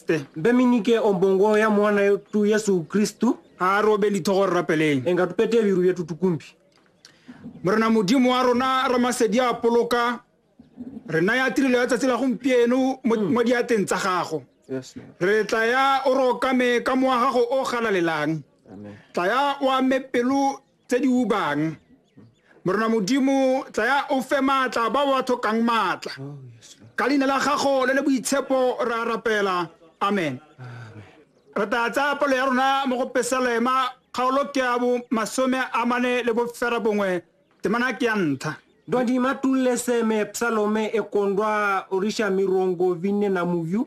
Kriste. Mbe mi nike ombongo ya mwana yetu Yesu Kristu. A robe lithogo re rapeleng. Enga tupete biru yetu tukumbi. Morena Modimo wa rona Ramasedi a poloka re naya tirelo ya tsatsi la gompieno mo hmm. diateng tsa gago. Re tla ya o rokame ka mowa gago o galalelang. Tla ya o ame pelo tse di ubang morena modimo tsaya o fe maatla ba ba tlhokang maatla oh, ka leina la gago le le boitshepo re a rapela amen re tla tsaya pelo ya rona mo go pesalema kgaolo ke ya bo masome a mane le bofera bongwe temana ke ya ntlha ndwandi matulleseme psalome ekondwa orisha mirongo vinne na muyu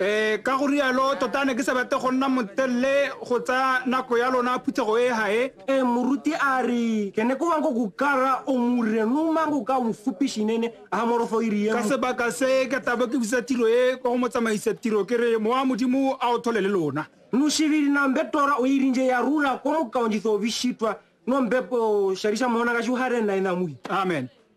Ee, ka go rialo, tota ne ke sa batle go nna motelele go tsa nako ya lona phuthego e ha e. E moruti a re, ke ne ko wanko go kara o mure no mango ka o fupishinene a morofo iri ye. Ka sebaka se ka tabo ke busa tiro e kwa go motsamaisa tiro ke re mowa modimo a o thole le lona. No shiviri na mbe tora o irinje ya rula ko mokaonjitho bishitwa no mbe po sharisha mona ka shuhare na ina mui. Amen.